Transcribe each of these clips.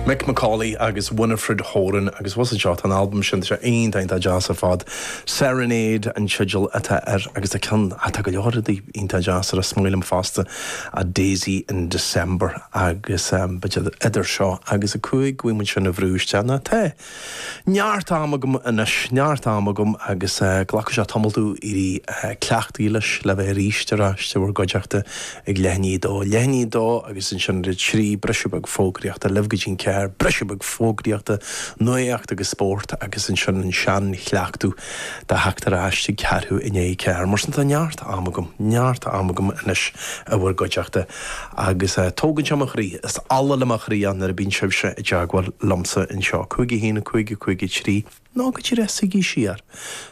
Mick McAuley agus Winifred Horan agus bhfuil a fhios agat seo tá an albam sin tá sé iontach iontach deas ar fad. Serenade an teideal atá air agus tá ceann tá go leor rudaí iontach deas air ach is maith liom fosta A Daisy in December agus b'fhéidir idir seo agus a cúig go bhfaighidh muid sin a bhrú isteach nó tá. Neart am agam anois. Neart am agam agus glacfaidh sé tamall domh éirí cleachtaithe leis, le bheith arís ar ais i bhur gcuideachta ag leath i ndiaidh a dó. Leath i ndiaidh a dó agus ansin ag a trí, briseadh beag fógraíochta, libh go dtí an ceathair, briseadh beag fógraíochta, nuacht agus spórt agus ansin an seanchleachtadh de theacht ar ais ag ceathrú i ndiaidh a ceathair. Mar sin tá neart am agam. Neart am agam anois i bhur gcuideachta. Agus tógann sé mo chroí, is ola le mo chroí nuair a bíonn sibhse i dteagmháil liomsa anseo. 51, 55, 3, Nó, go díreach, suígí siar.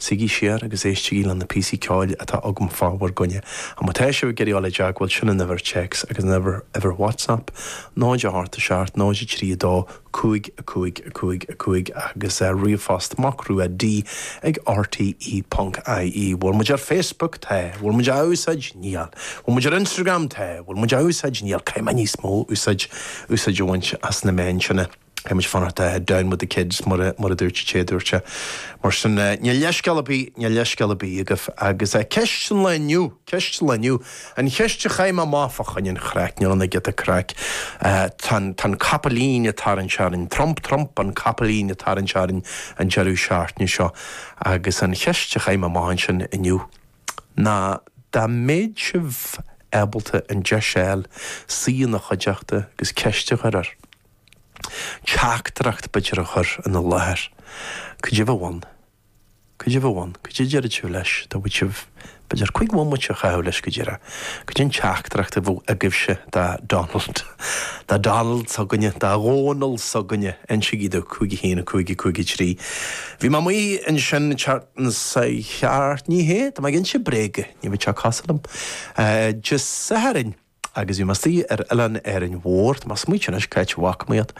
Suígí siar agus éistigí le na píosaí ceoil atá agam fá bhur gcoinne. Ach má tá sibh ag iarraidh dul i dteagmháil, sin an uimhir téacs agus an uimhir WhatsApp, 0 8 7 0 3 2 5 5 5 5 agus ríomhphost MacRua D ag RTÉ ponc IE bhfuil muid ar Facebook? Tá. bhfuil muid á úsáid? Níl. bhfuil muid ar Instagram? Tá. bhfuil muid á úsáid? Níl. Caithfidh mé níos mó úsáid úsáid a bhaint as na meáin sin. Caithfidh muid fanacht down with the kids mar a mar a dúirt an té a dúirt é. Mar sin, níl leithscéal ar bith níl leithscéal ar bith agaibh. Agus ceist an lae inniu, ceist an lae inniu. An cheist a chaith mé amach fá choinne an chraic nó an giota craic? Tá an capaillín ag tarraingt orainn. Trump, Trump, an capaillín ag tarraingt orainn an deireadh seachtaine seo. Agus an cheist a chaith mé amach ansin inniu ná dá mbeadh sibh ábalta an deis a fháil suí ina chuideachta agus ceist a chur air, teachtaireacht b'fhéidir a chur ina láthair, caidé a bheadh ann? Caidé a bheadh ann, caidé a déarfadh sibh leis, dá bhfaigheadh sibh, b'fhéidir, cúig bhomaite a chaitheamh leis, caidé, caidé an teachtaireacht a bheadh agaibhse do Donald, do Donald s'againne, do Dhónall s'againne, insigí domh, cúig a haon, cúig a cúig a trí. Bhí mé amuigh ansin ceart sa cheart, ní hea, tá mé ag inse bréaga, ní bheadh sé cosúil liom. Dé Sathairn. Agus bhí mé istigh ar oileán Árainn Mhór, tá mé ag smaointeamh anois c'áit a bhfaca mé iad,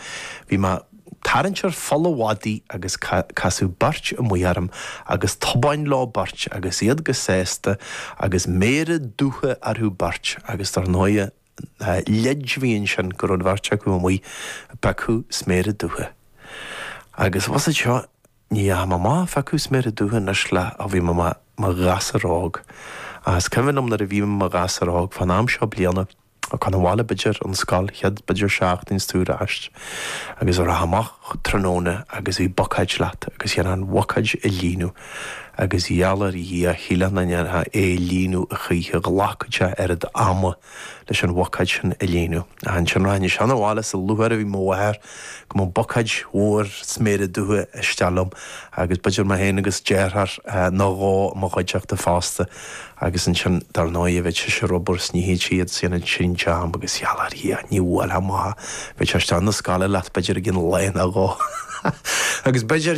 bhí mé ag tarraingt ar Pholl an Mhadaidh agus casadh beirt amuigh orm agus tobáin leo beirt agus iad go sásta agus méara dubha orthu beirt agus dar ndóigh leid a bhí ansin go raibh an bheirt acu amuigh ag piocadh sméara dubha agus bhfuil a fhios agat seo Ní raibh mé amuigh ag piocadh sméara dubha anois le ó bhí mé i mo ghasúr óg. Is cuimhin liom nuair a bhí mé i mo ghasúr óg fán am seo bliana chun an bhaile b'fhéidir ón scoil chéad b'fhéidir seachtain is tú ar ais agus rachfá amach tráthnóna agus bhí bucáid leat agus chaithfeá an bhucáid a líonadh agus geall ar Dhia shílfeá nach ndéanfá é a líonadh a choíche ghlacfadh sé oiread ama leis an bhocáid sin a líonadh. Ansin rachainnse chun an bhaile is an lúcháir a bhí ar mo mháthair go mbeadh bocáid mhór sméara dubha isteach liom agus b'fhéidir mé féin agus deartháir nó dhó i mo chuideachta fosta agus ansin dar ndóigh bheadh sise rhubarb is nithe tríd sin ansin jam agus ghealach ar Dhia. Ní bhuailfeadh mo mháthair. Bheadh sé isteach chun na scoile leat b'fhéidir go ceann lae nó dhó agus b'fhéidir.